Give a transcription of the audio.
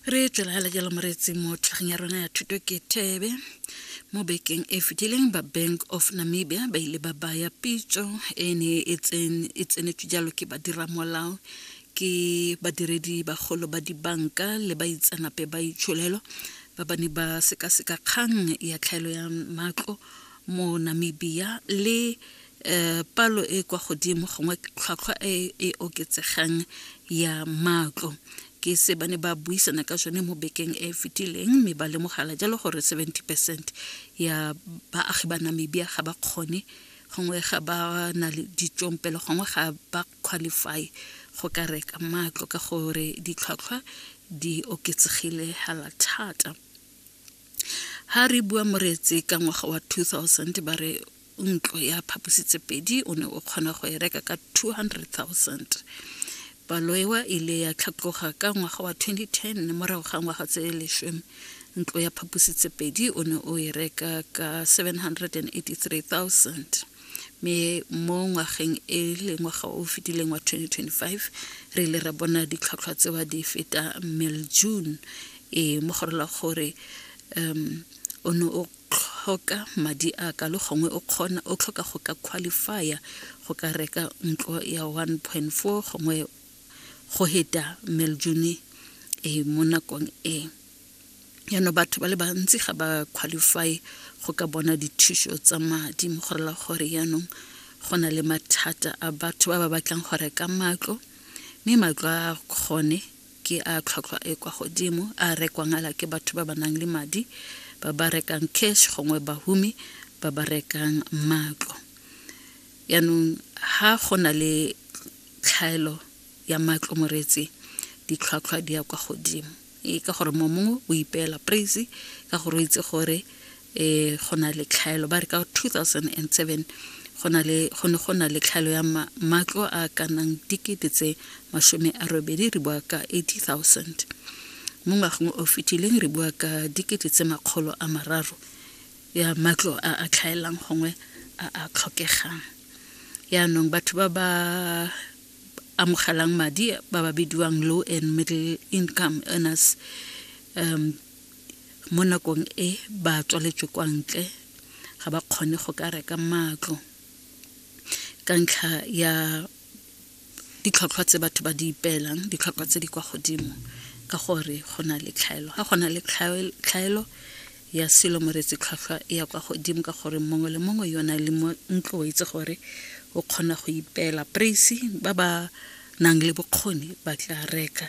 re tswela fela jalo moreetseng mo tlhageng ya rona ya thuto ke thebe mo bekeng e fetileng ba bank of namibia ba ile ba baya pitso e ne e, e tsenetswe jalo ke badiramolao ke badiredi bagolo ba dibanka le baitseanape ba itsholelo ba ba ne ba sekaseka kgang ya tlhaelo ya matlo mo namibia le um palo e e kwa godimo gongwe tlhwatlhwa e e oketsegang ya matlo ke se ba ne ba buisana ka sone mo bekeng e e fetileng mme ba lemogala jalo gore 70 percent ya baagi ba namibia ga ba kgone gongwe ga ba na le ditšompelo gongwe ga ba qualify go ka reka matlo ka gore ditlhwatlhwa di oketsegile hala thata ha re bua moretse ka ngwaga wa 2000 ba re ntlo ya phapositsepedi o ne o kgona go e reka ka 200,000 palo ewa e ile ya tlhatloga ka ngwaga wa 2010 morago ga ngwaga tse leshome ntlo ya phapositsepedi o ne o e reka ka 783,000 mme mo ngwageng e le ngwaga o fetileng wa 2025 re ile ra bona ditlhwatlhwa tsewa di feta mil june e mogorola gore um o ne o tlhoka madi a kalo gongwe o kgona o tlhoka go ka qualifya go ka reka ntlo ya 1.4 gongwe go heta meljune e mo nakong e yano batho ba le bantsi ga ba qualify go ka bona dithuso tsa madi mo go rela gore yaanong go na le mathata a batho ba ba batlang go reka matlo mme matlo a kgone Ke a tlhwatlhwa e kwa godimo a a rekwangala ke batho ba ba nang le madi, ba ba rekang cash gongwe bahumi ba ba rekang matlo. Yaanong ha go na le tlhaelo ya matlo moreetsi, ditlhwatlhwa di ya kwa godimo. E ka gore mongwe o ipeela praise ka gore o itse gore e go na le tlhaelo ba re ka 2007 go na le go ne go na le tlhaelo ya matlo a ka nang dikete tse masome a robedi re bua ka 80000 mo ngwageng o fetileng re bua ka dikete tse makgolo a mararo ya matlo a a tlhaelang gongwe a a tlhokegang yaanong batho ba ba amogelang madi ba ba bidiwang low and middle income earners um mo nakong e ba tswaletswe kwa ntle ga ba kgone go ka reka matlo ka ntlha ya ditlhotlhwa tse batho ba di ipeelang ditlhotlhwa tse di kwa godimo ka gore go na le tlhaelo ga go na le tlhaelo ya selo moretsi tlhwatlhwa e ya kwa godimo ka gore mongwe le mongwe yo na le mo ntlo o itse gore o kgona go ipeela praise ba ba nang le bokgoni ba tla reka